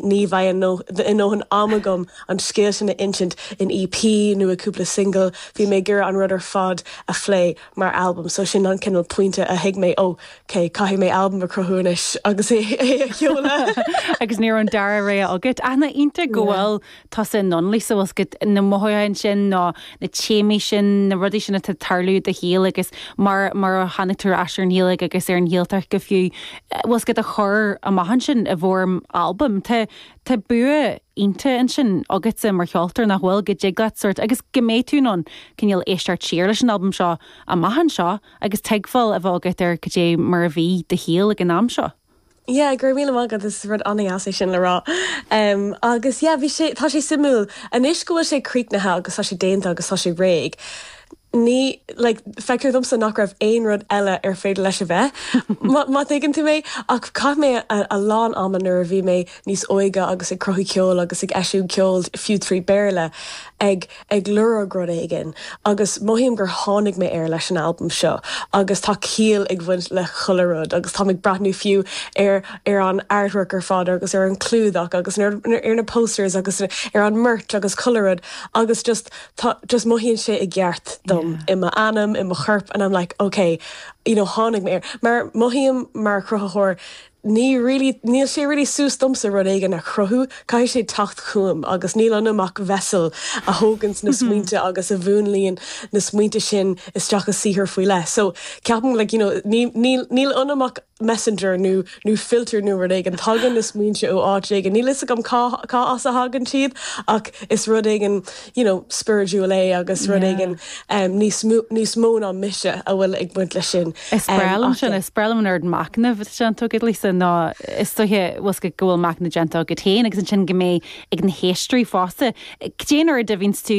Ní bheidh a ndóthain ama agam an scéal sin a insint in EP nó i gcúpla singil, bhí mé ag iarraidh an rud ar fad a phlé mar albam so sin an cineál pointe a thuig mé, oh, ok, caithfidh mé albam a chruthú anois agus é a sheoladh. Agus ní raibh an dara rogha agat. Ach nach iontach go bhfuil tusa in ann, like, tá 's agat, na mothúcháin sin nó na téamaí sin, na rudaí sin atá ag tarlú i do shaol agus mar, mar a tháinig tú ar ais ar an Ghaeilge agus ar an Ghaeltacht go fiú, bhfuil 's agat a chur amach ansin i bhfoirm albaim. Tá, tá bua iontach ansin agatsa mar cheoltóir, nach bhfuil, go dtig leat sort, agus go mbeidh tú in ann cineál éisteacht siar leis an albam seo amach anseo agus tuigbheáil a bheith agat ar cad é mar a bhí do shaol ag an am seo. Yeah, go raibh míle maith agat, is rud an-deas é sin le rá. Um, agus yeah, bhí sé, tá sé suimiúil. Anois go bhfuil sé críochnaithe agus tá sé déanta agus tá sé réidh, ní, like, feictear domsa nach raibh aon rud eile ar féidir leis a bheith, má, má thuigeann tú mé. Ach chaith mé a, a lán ama nuair a bhí mé níos óige agus ag cruthú ceoil agus ag eisiúint ceoil, fiú trí Béarla, ag. ag lorg rud éigin agus mothaím gur tháinig mé air leis an albam seo agus tá ciall ag baint le chuile rud agus táim ag breathnú fiú ar ar an artwork ar fad agus ar an clúdach agus ar ar na posters agus ar an merch agus chuile rud agus just tá just mothaíonn sé i gceart dom i m'anam i mo chorp and I'm like ok you know tháinig mé air mar mothaím mar chruthaitheoir ní really, níl sé really suas domsa rud éigin a chruthú, caithfidh sé teacht chugam agus níl ionam ach vessel a thóganns na smaointe agus a mhúnlaíonn na smaointe sin isteach i saothar faoi leith. So ceapaim like you know ní, níl, níl ionam ach messenger nó, nó filter nó rud éigin, tagann na smaointe ó áit éigin, níl a fhios agam cá, cá as a thagann siad ach is rud éigin, you know, spiridiúil é agus rud éigin em níos mó níos mó ná mise a bhfuil ag baint le sin Is breá em liom ach sin, yeah. is breá liom an oiread machnaimh atá déanta agat leis seo, nó is dóiche bhfuil 's agat go bhfuil machnamh déanta agat féin agus ansin go mbeidh ag na héisteoirí fosta. Cad é an oiread a bhíonns tú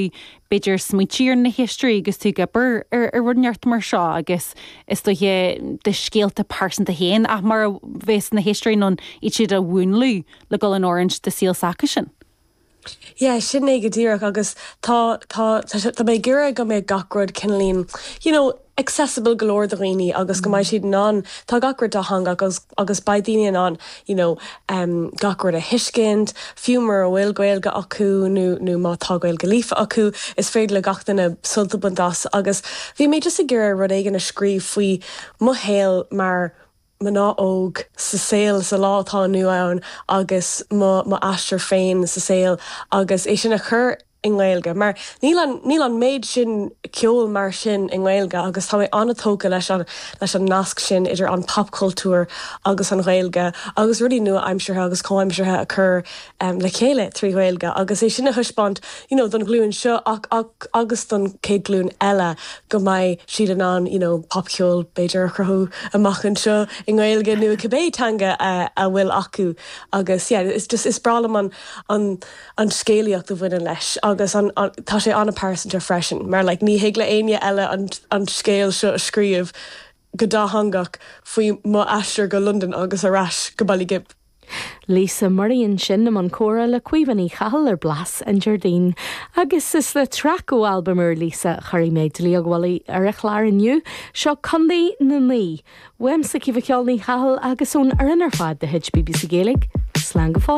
b'fhéidir ag smaointiú ar na héisteoirí agus tú ag obair ar ar rud inteacht mar seo agus is dóiche do scéalta pearsanta féin ach mar a bheas na héisteoirí in ann iad siúd a mhúnlú le dul in oiriúint do saol s'acusan? Yeah, sin é go díreach agus tá, tá, tá sé, tá mé ag iarraidh go mbeadh gach rud cineáilín, you know, accessible go leor do dhaoine agus go mbeidh siad in ann, tá gach rud dátheangach agus, agus beidh daoine in ann, you know, em, gach rud a thuiscint, fiú mura bhfuil Gaeilge acu nó, nó má tá Gaeilge líofa acu, is féidir le gach duine sult a bhaint as agus bhí mé just ag iarraidh rud éigin a scríobh faoi mo shaol mar, mná óg sa saol sa lá atá inniu ann agus mo mo aistear féin sa saol agus é sin a chur i nGaeilge mar níl an níl an méid sin ceol mar sin i nGaeilge agus tá mé an-tógtha leis an leis an nasc sin idir an popchultúr agus an Ghaeilge agus rudaí nua-aimseartha agus comhaimseartha a chur le chéile trí Ghaeilge agus é sin a thaispeáint you know don ghlúin seo ach ach agus don chéad glúin eile go mbeidh siad in ann you know popcheol b'fhéidir a chruthú amach anseo i nGaeilge nó i cibé teanga a a bhfuil acu agus yeah is just is breá liom an an an scéalaíocht a bhaineann leis agus an an tá sé an-phearsanta freisin mar like ní thig le éinne eile an an scéal seo a scríobh go dátheangach faoi mo aistear go Londain agus ar ais go Baile Ghib. Lisa Murray ansin i mbun comhrá le Caoimhe Ní Chathail ar Blas an Déardaoin. Agus is le traic ó albam úr Lisa a chuirfidh mé dlaíóg mhullaigh ar an chlár inniu. Seo Contae na Mí. Uaimse, Caoimhe Cheol Ní Chathail agus ón fhoireann ar fad de chuid BBC Gaeilge, slán go fóill!